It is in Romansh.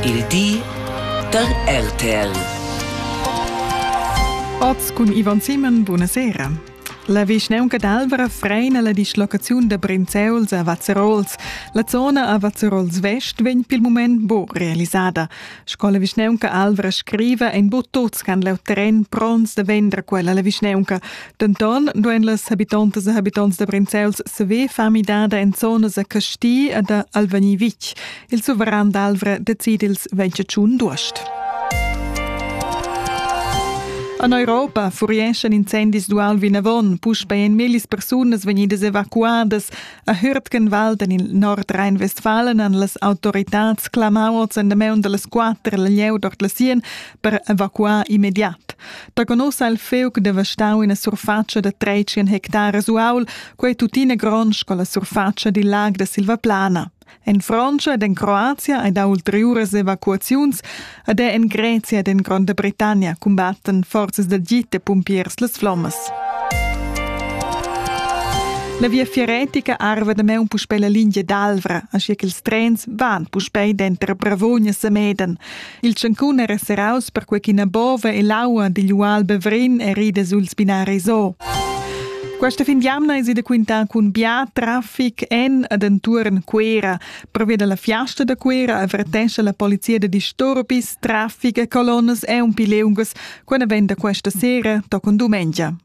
Il di da RTL. Oz cun Ivan Simon, buonasera. La vischnaunca d'Alvra freina la dislocaziun da Brinzeuls a Vazzerols. La zona a Vazzerols Vest vegn pil mument buc realisada. Sco la vischneunca Alvra scriva, ein bu tuts che han leu terren pronts da vender quella alla vischneunca. Denton duein las habitontas e habitonts da Brinzels saver far midada en zonas a Casti e da Alvani Vitg. Il suveran d'Alvra decide ils 28 d'uost. En Europa furieschan incendis dual vinavon, puspei ein millis persunas vegnidas evacuadas. A Hürtgenwald en il nord Rhein-Westfalen han las autoritads clamà oz endamaun da las quatter al lieu dort la sien per evacuar immediat. Da conossa il feuc devastau ina surfatscha da 13 hectares uaul, quei tuttina gronds con la surfatscha dil lag da Silvaplana. En Frantscha ed en Croazia ei dau ulteriuras evacuaziuns ed er en Grezia ed en Gronda Britannia cumbattan forzas da git e pumpiers las flommas. La viafier retica arva da meun puspei la lingia d'Alvra, aschia che ils trens van puspei denter Bravogna e Semeden. Il tschancun era serraus perquei ch'ina bova e l'aua digl ual Bevrin erida sul spinar e zo. Questa fin d'jamna è si da quintar cun bia traffic en ad entuorn Cuera. Pervia dalla fiasta da Cuera avvertesce la polizia da disturbis, traffic e colonnas e un pi leungas. Quella venda questa sera toccon dumengia.